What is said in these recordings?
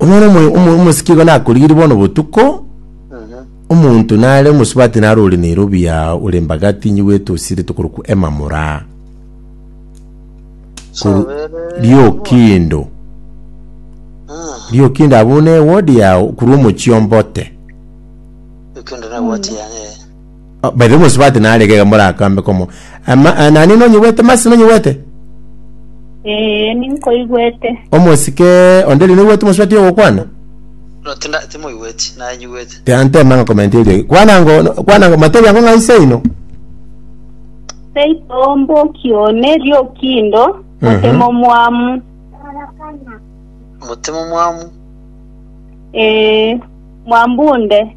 Omwana omo- omo- omosike igo nakorigirie bono botuko Mhm. omonto nare omosubati nare ore nairobi ya ore mbaga tinyi gwete osire tokorokwa emamura Koru- Chobere. riokindo Mm. riokindo abwo ne wodi yao korwa omochie ombote Ekende na wati yane. Baria omosubati narege iga morakambe komo, Ama- a- nani nonyigwete, Masi nonyigwete? Ee, ninkoigwete. Omosike onde riria oigwete omosubati ogokwana? No, tinda- timoigweti, nanyigwete. Tiantema ng'a komenti erio ege. Kwana ngo, no- kwana ngo, matebi ango ng'a ise oino. Seito omboki one riokindo, Mhm. motemo mwamu. Motemo mwamu, Ee, mwambunde.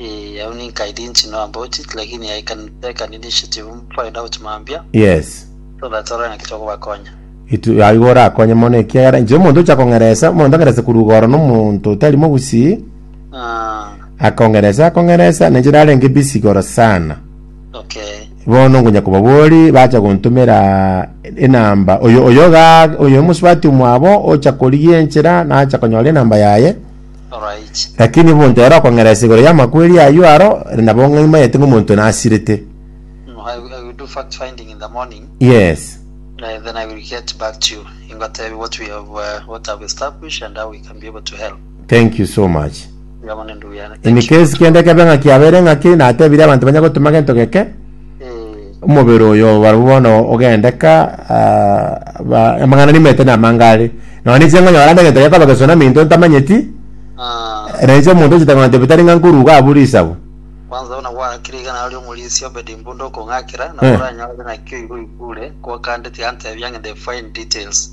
Eeh au ninkaidi inche no amboti lakini yaikani kani ninche chibu find out mambia Yes. so that orore naki tokobakonya. Itu aigo orakonye mono ekiagera inche omonto ocha kong'eresa omonto ang'erese korwa igoro na omonto otari mogusii Ah akong'eresa akong'eresa na inche narenge busy igoro sana okay. bono ngonya kobabori bacha gontomera enamba oyo oyo igaa oyo omosubati omwabo ocha korigia enchera nacha konyora enamba yaye Lakini omonto ere okong'ereria ase igoro y'amakweri ayio aro, ere nabo ng'aimanyete ng'a omonto oyio nasirete. Yes. Thank you so much. In case kende kebe ng'a kiabeire ng'ake, natebire abanto banye gotoma gento geke, Omobere oyo barabwo bono ogendeka ah, ba- amang'ana nimete na amanga are nonya ninche ng'onye barande egento gekoba gesunami into ntamanyeti Ah, na inche omonto ochete ng'ona tebi tari ng'a nkoruga abwo risabu kwanza buna gwakire iga naro omorisia Obedi Mbunda okong'akera, nabo Eh. oranyore nakio igo oigure, kwakandeti gantebia ng'ende fine details.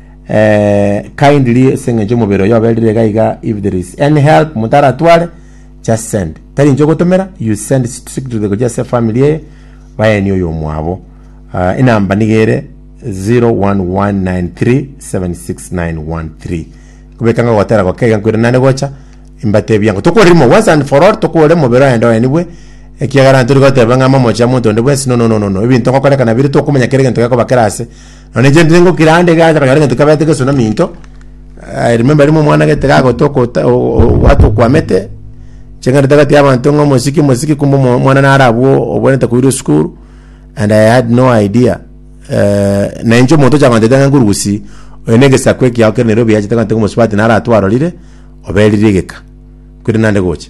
eh, kindly ase eng'encho omobere oyo oberire iga iga if there is any help motaratware just send tari inche ogotomera you send it strictly to the gochi ase family eye bayenie oyo omwabo uh, enamba niga ere 0119376913 kobeka ng'a gotera goke iga nkwire nane gocha imbatebia ng'a tokorimo once and for all tokore omobere oende oenigwe ekiagera ntori goteba ng'a momochia monto onde bwensi no no no no no ebinto ngokorekana bire tokomanya kere egento gekoba kera ase Nonya inche ntiri ngo kirande iga acha konyora egento kabete gesuna minto, I remember rimo omwana gete gagote okota o- o- ogwata okwamete, inche ngende tagati ya abanto ng'a omosike omosike kumbe omo- omwana naro abwo obwenerete koirwa esukuru, and I had no idea eh, na inche omonto ocha gonteta ng'a nkorugusi oyo na egesaku ekiao kere Nairobi yachete kogoteba ng'a omosubati naro atwarorire, oberire egeka, kweri nande gocha.